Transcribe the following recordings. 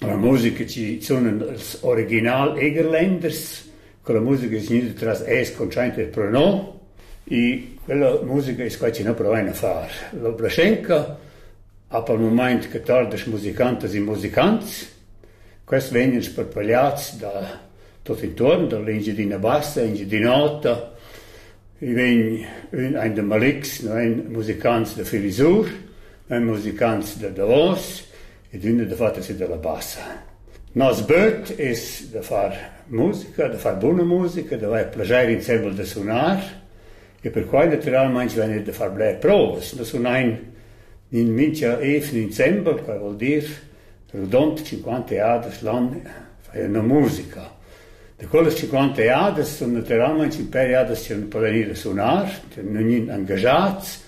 La musica chi sunan els original Egerländers, quella musica es gnüda tras Es contschainta e Pronom e quella musica es quai chi nu provain a far. L'opra Schenker ha per mumaint che tardas musicantas e musicants. Quels vegnan sparpagliats da tuot intuorn, da l'Engiadina Bassa, Engiadin'Ota. I vegn ün aint da Malix, no vain musicants da Filisur, vain musicants da Davos Ed ün è da far tessì da la bassa. Nos böt es da far musica, da far buna musica, d'avair plaschair insembel da sunar e perquai natüralmaing vegn da far bler provas. Nus sunain in mincha evn insembel, quai voul dir redond 50 jadas l'an fain üna musica. Da quellas 50 jadas sun natüralmaing in pêr jadas chi nu po venir a sunar, tü nun gnün angajats,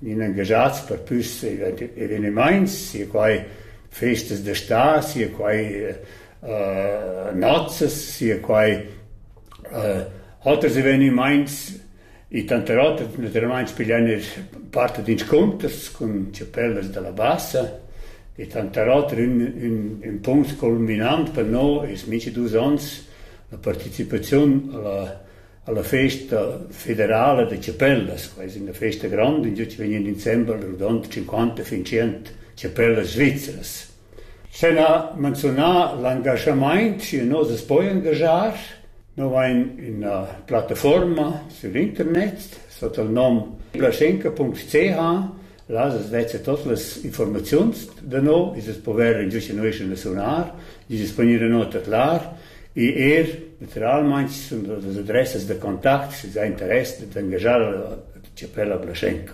inengaschats per püs evenimaints, sia quai festas da stà, sia quai nozzas, sia quai oters evenimaints e tanter oters natüralmaing piglian eir part d'inscunters cun chapellas da la bassa e tanter oter ün ün ün punct culminant per no es mincha dus ons la partecipaziun a la Alla festa federala da chapellas, quai es üna festa granda, ingio chi vegnan insembel rodond cinquanta fin tschient chapellas svizras. Sen ha manzunà l'angaschamaint, schi nos as poi angaschar. Nous vain üna plattafuorma sur internet sot il nom plaschenca.ch Là as vezza tot las informaziuns da nou, i's es pover ingiustinueschan da sunar, i's es vegnida nota clar e eir natüralmaing sun las adressas da contact sü già interess d'angaschar la chapella Blaschenka.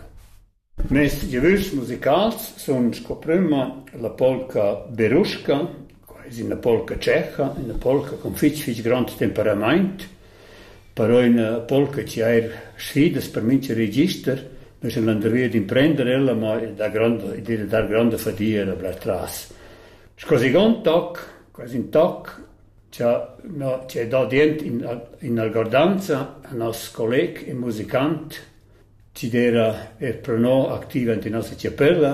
Mes giavüschs musicals sun sco prüma la polca Beruschka Quai es üna polca tschecha, üna polca cun fich fich grond temperamaint, però üna polca chi eir sfidas per mincha register. Nus sun andrì ad imprender ella, ma e dà gronda, i d'eira dar gronda fadia ella bler tras. Sco second toc, quasi ün toc, cha no chi ha dà dient in in algordanza a nos colleg e musicant Chi d'eira eir pro no activa int ün nossa chapella.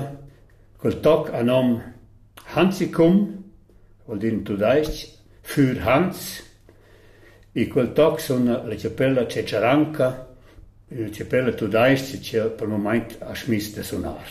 Quel toc a nom Hansicum, vuol dir in tudais-ch Für Hans. E quel toc sun la chapella Cecharanca, üna chapella tudais-cha chi pro mumaint ha schmiss da sunar.